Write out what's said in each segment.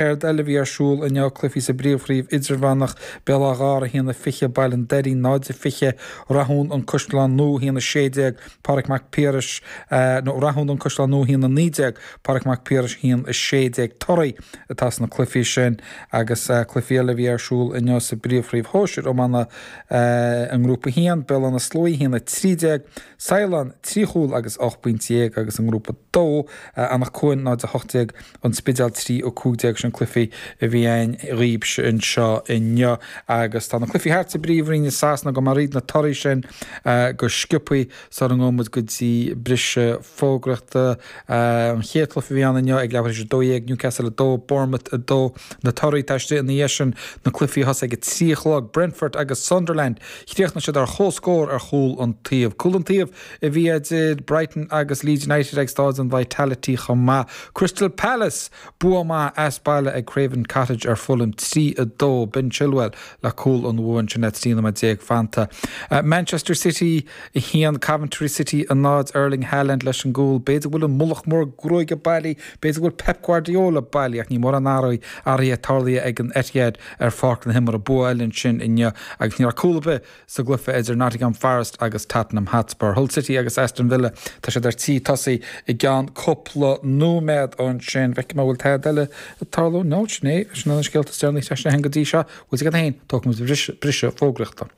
Céard eile a bhí ar siúl inniu? Cluichí sa bPríomhchraobh Idirmheánach, Béal Átha Ghártha, 1-20 Baile an Doirín, 0-20 Rathún, An Caisleán Nua, 1-16 Pádraic Mac Piarais, nó Rathún, An Caisleán Nua, 1-19 Pádraic Mac Piarais, 1-16 torthaí atá sna cluichí sin agus cluichí eile a bhí ar siúl inniu sa bPríomhchraobh Shóisir Iomána i nGrúpa 1, Béal Átha na Sluaighe, 1-13 Saighleán, 3 chúl agus 18 bpointe, agus i nGrúpa 2, Anach Cuain, 0-18. An Spidéal trí ó cúig déag sin cluichí a bhí ann dhaoibhse anseo inniu agus tá na cluichí thart sa bPríomhroinn i Sasana gabhfaidh mé thríd na torthaí sin go sciobthaí sara ngabhfaidh muid go dtí briseadh fógraíochta. An chéad cluiche a bhí ann inniu ag leathuair tar éis a dó dhéag, Newcastle 2, Bournemouth 2 na torthaí atá istigh ina dhiaidh sin na cluichí a thosaigh ag a trí a chlog, Brentford agus Sunderland. Chríochnaigh siad ar chomhscór ar chúl an taobh. Cúl an taobh. Bhí idir Brighton agus Leeds United ag Staid an Vitality chomh maith. Crystal Palace bua maith as baile ag Craven Cottage ar Fulham, 3-2. Ben Chilwell le cúl an bhua ansin le 13 nóiméad fanta. Manchester City 1, Coventry City 0. Erling Haaland leis an gcúl. B'fhéidir go bhfuil an mullach mór gruaige bailithe, b'fhéidir go bhfuil Pep Guardiola bailithe ach níl mórán athraithe, athraithe tarlaithe ag an Etihad ar pháirc na himeartha. Bua eile ansin inniu agus ní raibh cúl ar bith. Sa gcluiche idir Nottingham Forest agus Tottenham Hotspur, Hull City agus Aston Villa, tá siad ar tí tosaí i gceann cúpla nóiméad. Ansin feicfidh mé an bhfuil tada eile ag tarlú. No, sin é. Sin iad na scéalta is deireanaí a sheas mé féin go dtí seo. Bhuel, sin iad féin. Tógfaidh muid briseadh, briseadh fógraíochta.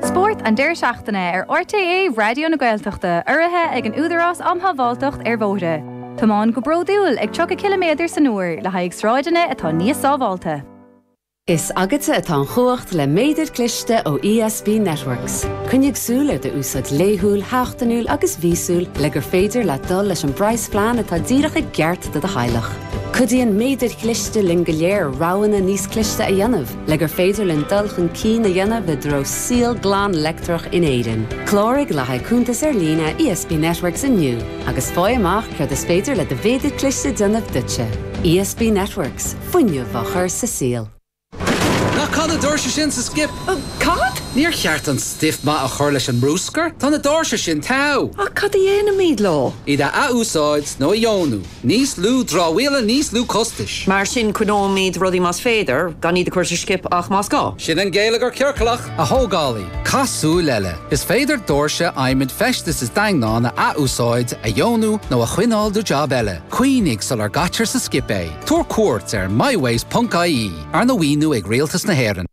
Spórt an deireadh seachtaine ar RTÉ Raidió na Gaeltachta urraithe ag an Údarás Um Shábháilteacht ar Bhóithre. Tiomáin go bródúil ag 30 ciliméadar san uair le haghaidh sráideanna atá níos sábháilte. Is agatsa atá an chumhacht le méadar cliste ó ESB Networks. Coinnigh súil ar do úsáid laethúil, sheachtainiúil agus mhíosúil le gur féidir leat dul leis an bpraghas phlean atá díreach i gceart do do theaghlach. Cuidíonn méadair chliste linn go léir roghanna níos cliste a dhéanamh. Le gur féidir linn dul chun cinn a dhéanamh i dtreo saol glan leictreach in Éirinn, cláraigh le haghaidh cuntas ar líne ESB Networks inniu agus faigh amach céard is féidir le do mhéadar cliste déanamh duitse. ESB Networks, fuinneamh á chur sa saol. Ná caith na doirse sin sa skip! Cad? Níor cheart an stuif maith a chur leis an mbruscar? Tá na doirse sin togha! Ach cad a dhéanfaimid leo? Iad a athúsáid nó a dheonú? Níos lú dramhaíola, níos lú costais. Mar sin coinneoimid rudaí más féidir, gan iad a chur sa scip ach más gá. Sin an geilleagar ciorclach! A thógálaí, caith súil eile. Is féidir doirse adhmaid feistis is daingneáin a athúsáid, a dheonú nó a choinneáil do jab eile. Cuimhnigh sular gcaitear sa skip é. Tabhair cuairt ar mywaste.ie, arna mhaoiniú ag Rialtas na hÉireann.